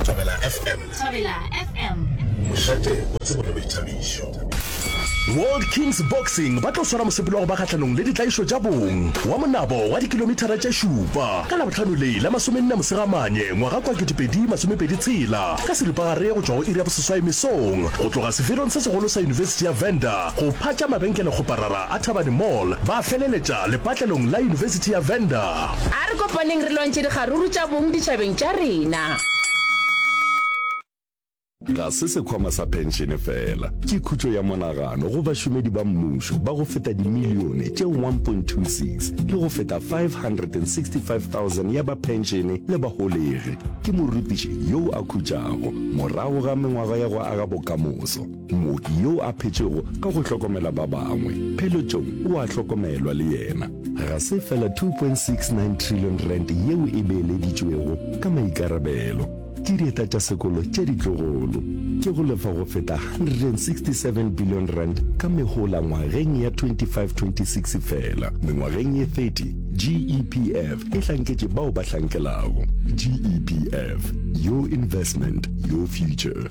Thobela FM. Thobela FM. Mošate o tsebo le boithabišo. World Kings Boxing ba tlo swara mosepelo wa go ba kgahlanong le ditlaišo tša bong wa monabo wa dikilomithara tše šupa ka labohlano le la masomenne mosegamanye ngwaga kwa ketepedi masomepedi tshela ka seripagare go tšwa go iri ya boseswai mesong go tloga sefelong se segolo sa yunibesithi ya venda go phatša mabenkele kgoparara a thabane mall ba feleletša lepatlelong la yunibesithi ya venda A re kopaneng re lwantšhe dikgaruru tša bong ditšhabeng tša rena. Ga se sekhwama sa phenšene fela, ke khutšo ya monagano go bašomedi ba mmušo ba go feta dimilione tše 1.26 le go feta 565,000 ya ba phenšene le baholegi, ke morutiši yoo a khutšago morago ga mengwaga ya go aga bokamoso. Mooki yo a phetšego ka go hlokomela ba bangwe, pheletšong o a hlokomelwa le yena. Ga se fela 2.69 trillion rand yeo e beeleditšwego ka maikarabelo ke dieta tša sekolo tše ditlogolo, ke go lefa go feta 167 billion rand ka mehola ngwageng ya 25-26 fela. Mengwageng ye 30, GEPF e hlanketše bao ba hlankelago. GEPF, your investment, your future.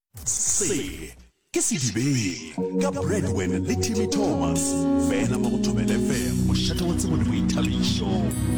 Se ke sedibeng ka Bradwen le Timmy Thomas fela mo go Thobela FM mošate wa tsebo le boithabišo.